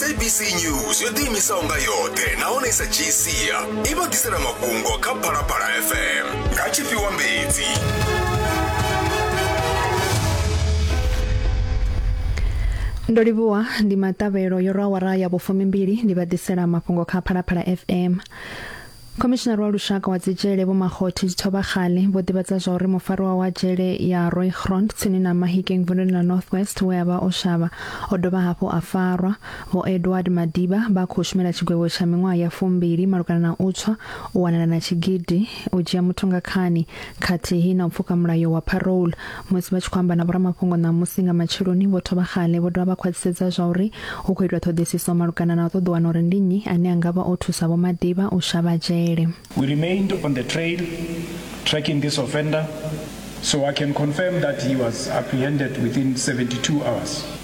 sabc news yo ḓiimisaho nga yoṱhe nahone i sa dzhii sia i vha ḓisela mafhungo kha phalaphala fm nga tshifhiwa mbedzi ndo livhuwa ndi maṱavhelo yo rwa awara ya vhufumimbili ndi vha ḓisela mafhungo kha phalaphala fm khomishinari wa lushaka wa dzitshele vho makgothe dzithobakgale vho ḓivhadza zwa uri mufariwa wa dzhele ya roygrond tsini na mahikeng vunduni ḽa north west we a vha o shavha o dovha hafhu a farwa vho edward madiba vha khou shumela tshigwevho tsha miṅwaha ya fumbili malugana na u tswa u wanala na tshigidi u dzhia muthu nga khani khathihi na u pfuka mulayo wa parole musi vha tshi khou amba na vhoramafhungo ṋamusi nga matsheloni vho thoma xale vho dovha vha khwaṱhisedza zwa uri hu khou itwa ṱhoḓisiso malugana na u ṱoḓa wana uri ndi nnyi ane a nga vha o thusa vho Madiba u shavha dzhele We remained on the trail tracking this offender so I can confirm that he was apprehended within 72 hours.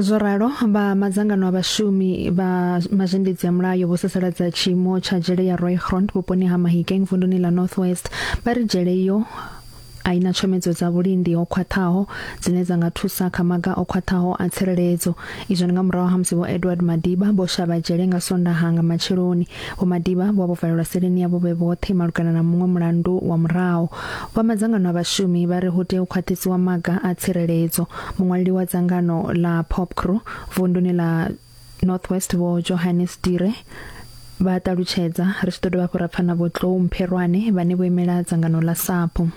zwo ralo vha madzangano a vhashumi vha mazhendedzi ya mulayo vho sasaladza tshiimo tsha dzhele ya Roygrond vhuponi ha Mahikeng vunduni ḽa North West vha ri dzhele iyo a ina tshomedzo dza vhulindi ho khwaṱhaho dzine dza nga thusa kha maga o khwaṱhaho a tsireledzo izwo ndi nga murahu ha musi vho Edward Madiba vho shavha dzhele nga Sondaha nga matsheloni Vho Madiba vho vha vho valelwa seleni yavho vhe vhoṱhe malugana na muṅwe mulandu wa murahu. Vha madzangano a vhashumi vha ri hu tea u khwaṱhisiwa maga a tsireledzo. Muṅwaleli wa dzangano ḽa Popcru vunduni ḽa Northwest vho Johannes Dire vha ṱalutshedza ri tshi ḓo dovha hafhu ra pfa na vho Tlou Mpherwane vhane vho imela dzangano ḽa SAPU.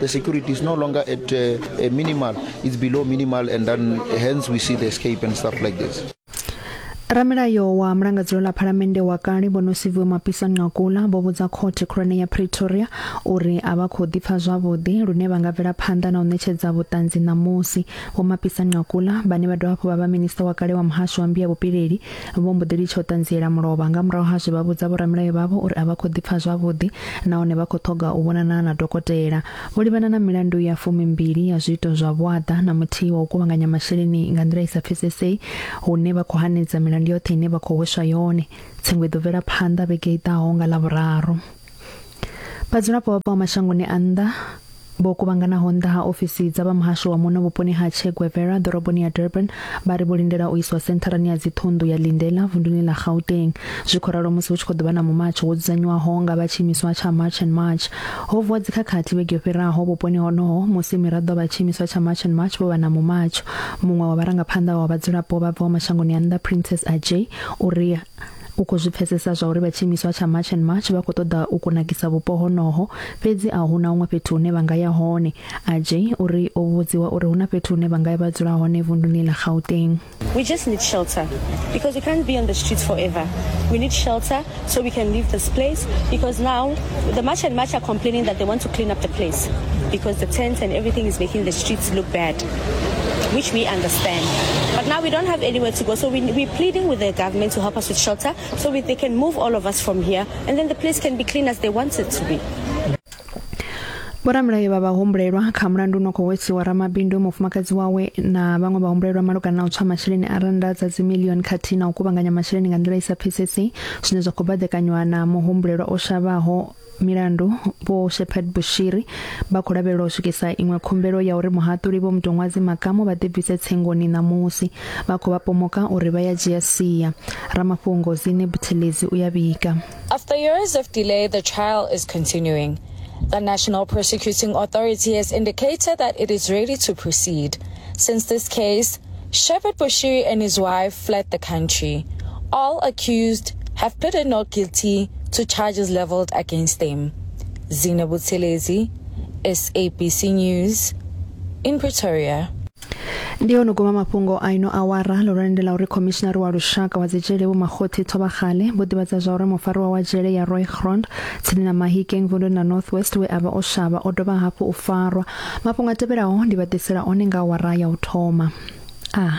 The security is no longer at uh, a minimal, it's below minimal, and then hence we see the escape and stuff like this. ramulayo wa mulangadzelo ḽa phalamennde wa kale vho no siviwe mapisa nqakula vho vhudza khothe khulwane ya pretoria uri a vha khou ḓipfa zwavhuḓi lune vha nga bvela phanḓa na u ṋetshedza vhuṱanzi ṋamusi vho mapisa nqakula vhane vha dovha hafhu vha vha minista wa kale wa muhasho wa mbiya vhupileli Vho mbo ḓi litsha u ṱanziela mulovha. Nga murahu ha zwe vha vhudza vhoramilayo vhavho uri a vha khou ḓipfa zwavhuḓi nahone vha khou ṱhoga u vhonana na dokotela. Vho livhana na milandu ya fumimbili ya zwiito zwa vhuaḓa na muthihi wa u kuvhanganya masheleni nga nḓila i sa pfesesei hune vha khou hanedza milandu yoṱhe ine vha khou hweswa yone. Tsengo i ḓo bvela phanḓa vhege i ḓaho nga Ḽavhuraru. Vhadzulapo vhapo ha mashangoni a nnḓa vho kuvhanganaho nnḓa ha ofisi dza vha muhasho wa muno vhuponi ha Che Guevara ḓoroboni ya Durban vha ri vho lindela u iswa sentharani ya dziṱhunḓu ya Lindela vunduni ḽa Gauteng zwi khou ralo musi hu tshi khou ḓo vha na mumatsho wo dzudzanywaho nga vha tshiimiswa tsha March and March ho vuwa dzikhakhathi vhege yo fhiraho vhuponi honoho musi miraḓo vha tshiimiswa tsha March and March vho vha na mumatsho muṅwe wa vharangaphanḓa wa vhadzulapo vha bvaho mashangoni a nnḓa Princess Ajay uri U khou zwi pfesesa zwa uri vha tshiimiswa tsha March and March vha khou ṱoḓa u kunakisa vhupo honoho, fhedzi a hu na huṅwe fhethu hune vha nga ya hone. Ajay u ri o vhudziwa uri hu na fhethu hune vha nga ya vha dzula hone vunduni ḽa Gauteng. We just need shelter because we can't be on the streets forever. We need shelter so we can leave this place because now the March and March are complaining that they want to clean up the place because the tents and everything is making the streets look bad. which we understand. But now we don't have anywhere to go, so we, we're pleading with the government to help us with shelter so we, they can move all of us from here, and then the place can be clean as they want it to be. vhoramulayo vha vhahumbulelwa kha mulandu uno khou wesiwa ramabindu mufumakadzi wawe na vhaṅwe vhahumbulelwa malugana na u tswa masheleni a rannda dza dzimilioni khathihi na u kuvhanganya masheleni nga nḓila i sa pfesesi zwine zwa khou baḓekanywa na muhumbulelwa o shavhaho milandu vho shepherd bushiri vha khou lavhelelwa u swikisa iṅwe khumbelo ya uri muhaṱuli vho mutoṅwazi makamo vha ḓibvise tsengoni ṋamusi vha khou vha pomoka uri vha ya dzhia sia ramafhungo zine buthelezi u ya vhiga After years of delay, the trial is continuing. The National Prosecuting Authority has indicated that it is ready to proceed. Since this case, Shepherd Bushiri and his wife fled the country. All accused have pleaded not guilty to charges leveled against them. Zina Buthelezi, SABC News, in Pretoria. ndi yo no guma mafhungo a ino awara lurani ndi ḽa uri khomishinari wa lushaka wa dzidzhele vho makgothe thobagale vho ḓivhadza zwa uri mufariwa wa dzhele ya roy grond tsini na mahikeng vunduni na north west we a vha o shavha o dovha hafhu u farwa mafhungo a tevhelaho ndi vha ḓisela one nga awara ya u thoma a ah.